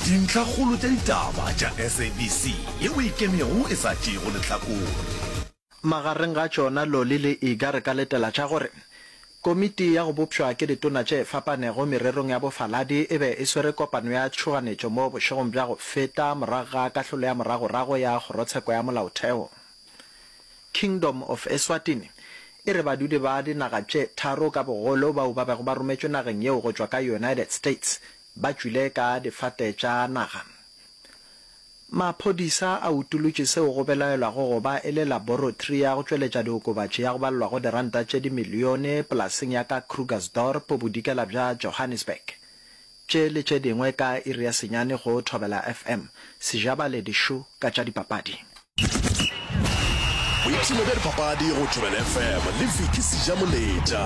Dintlhakgolo tša ditaba tša SABC yeo e kemego e sa tšeego lehlakore. Magareng ga tšona Loli le Iga re ka letela tša gore Komiti ya go Bopšwa ke Ditona tše Fapanego Mererong ya Bofaladi e be e swere kopano ya tšhoganetšo mo bošegong bja go feta morago ga kahlolo ya moragorago ya Kgorotsheko ya Molaotheo. Kingdom of Eswatini e re badudi ba dinaga tše tharo ka bogolo bao ba bego ba rometšwe nageng yeo go tšwa ka United States ba tšwile ka difate tša naga. Maphodisa a utolotše seo go belaelwago go ba e le laborotri ya go tšweletša diokobatši ya go balelwa go diranta tše dimilione polaseng ya ka Krugersdorp bodikela bja Johannesburg. Tše le tše dingwe ka iri ya senyane go Thobela FM. Sejabale dišu ka tša dipapadi. Boipshino bja dipapadi go Thobela FM le Vicky Sejamoletša.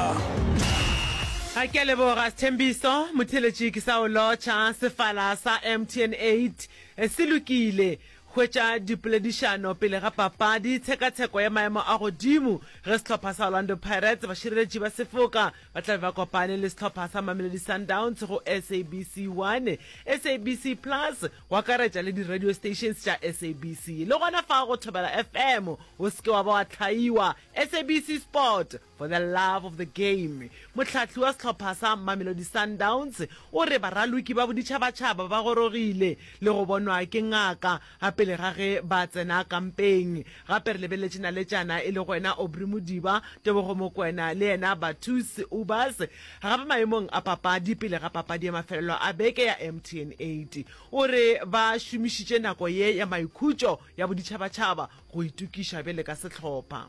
Ga ke a leboga Sthembiso Motheletši ke sa o lotšha. Sefala sa MTN eight se lokile. Hwetša dipoledišano pele ga papadi. Tshekatsheko ya maemo a godimo ge sehlopha sa Orlando Pirates bašireletši ba sefoka Ba tla be ba kopane le sehlopha sa Mamelodi Sundowns go SABC 1, SABC Plus, go akaretša le di-radio stations tša SABC. Le gona fa go Thobela FM, o se ke wa ba wa hlaiwa. SABC Sport, for the love of the game. Mohlahli wa sehlopha sa Mamelodi Sundowns o re baraloki ba boditšhabatšhaba ba gorogile le go bonwa ke ngaka A Pele ga ge ba tsena kampeng, gape re lebeletše naletšana e lego yena Aubrey Modiba, Tebogo Mokwena le yena Bathus Ubas. Gape maemong a papadi pele ga papadi ya mafelelo a beke ya MTN 8, o re ba šomišitše nako ye ya maikhutšo ya boditšhabatšhaba go itokiša bjale ka sehlopha.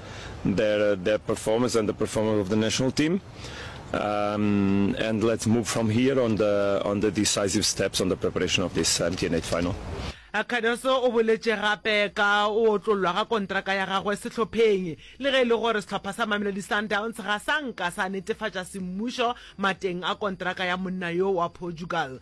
their uh, their performance and the performance of the national team. Um, and let's move from here on the on the decisive steps on the preparation of this MTN8 final. Cardoso o boletse gape ka o otlollwa ga kontraka ya gagwe setlhopheng le ge e le gore setlhopha sa Mamelodi Sundowns ga sa nka sa netefatša semmušo mateng a kontraka ya monna yo wa Portugal.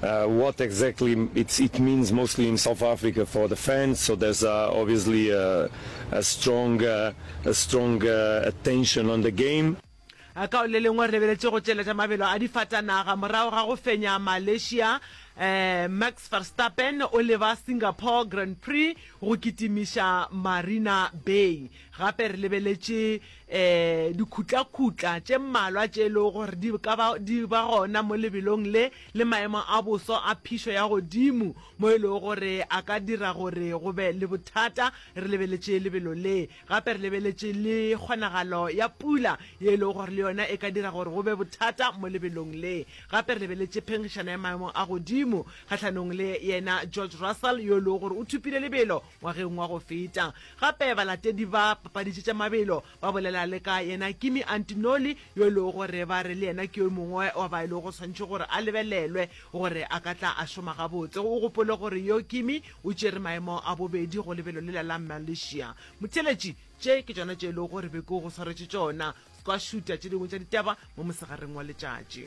What exactly it means mostly in South Africa for the fans. So there's uh, obviously a, a strong, uh, a strong uh, attention on the game. Eh, ka le lengwe re lebeletše go tšeletša mabelo a difatanaga morago ga go fenya malaysia eh, max verstappen o leba singapore grand prix go kitimiša marina bay gape re lebeletše um dikhutlakhutla tše mmalwa tše e lego gore di ka ba di ba gona mo lebelong le le maemo a boso a phišo ya godimo mo e lego gore a ka dira gore go be le bothata re lebeletše lebelo le. Gape re lebeletše le kgonagalo ya pula ye e lego gore le yona e ka dira gore go be bothata mo lebelong le. Gape re lebeletše phengišana ya maemo a godimo kgahlanong le yena George Russell yo e lego gore o thupile lebelo Ngwageng wa go feta, gape balatedi ba papaditše tša mabelo ba bolela le ka yena Kimi Antinoli, yo e lego gore ba re le yena ke yo mongwe wa ba e lego go swanetše gore a lebelelwe gore a ka tla a šoma gabotse. O gopole gore yo Kimi o tšere maemo a bobedi go lebelo lela la Malaysia. Motheeletši, Tše ke tšona tše e lego gore be ke go swaretše tšona, ska šuta tše dingwe tša ditaba mo mosegareng wa letšatši.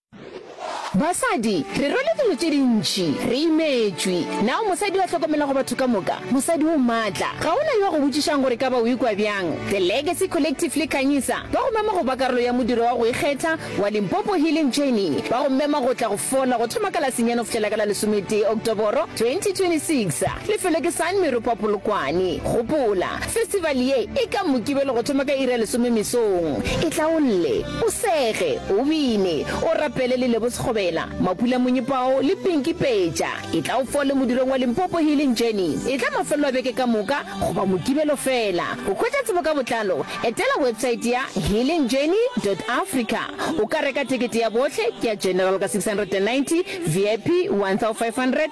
Basadi, re rwele dilo tše dintši, re imetšwe. Na o mosadi yo a hlokomelago batho ka moka? Mosadi o maatla. Ga go na yo a go botšišago gore e ka ba o ikwa bjang. The Legacy Collective le Khanyisa ba go mema go ba karolo ya modiro wa go ikgetha wa Limpopo Healing Journey. Ba go mema go tla go fola go thoma ka Lasenyana go fihlela ka la lesometee Oktoboro 2026. Lefelo ke Sun Meropa Polokwane. Gopola, festival ye e ka Mokibelo go thoma ka iri ya lesome mesong. E tla o lle. O sege, o bine, o rapele le Lebo Sekgobela, Mapula Monyepao le Pinky Peja. Etla o fole modulong wa Limpopo Healing Journey. Etla mafelelo a beke ka moka goba Mokibelo feela. Go hwetša tsebo ka botlalo, etela websaete ya healingjourney.africa. O ka reka tekete ya bohle, ke ya General ka 690, VIP 1500,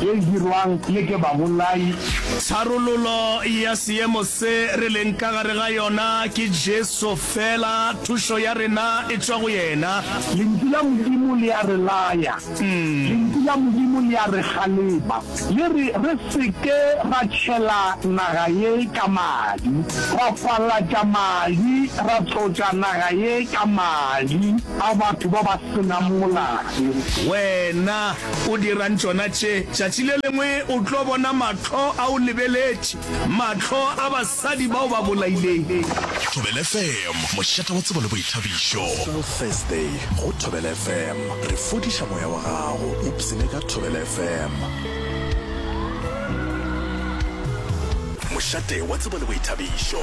ye e dirwang le ke babolai. Tharololo ya seemo se re leng ka gare ga yona ke Jesu fela, thušo ya rena e tšwa go yena. Lentšu la Modimo le a re laya, Lentšu la Modimo le a re kgalema, le re re se ke ra tšhela naga ye ka madi, ra palatša madi, ra tlotša naga ye ka madi a batho ba ba se nang molato. Wena O dirang tšona tše? Tšatši le lengwe o tlo bona mahlo a o lebeletše, mahlo a basadi ba o ba bolaileng. Thobela FM, mošate wa tsebo le boithabišo. Special Thursday go Thobela FM. Re fodiša moya wa gago o psine ka Thobela FM. Mošate wa tsebo le boithabišo.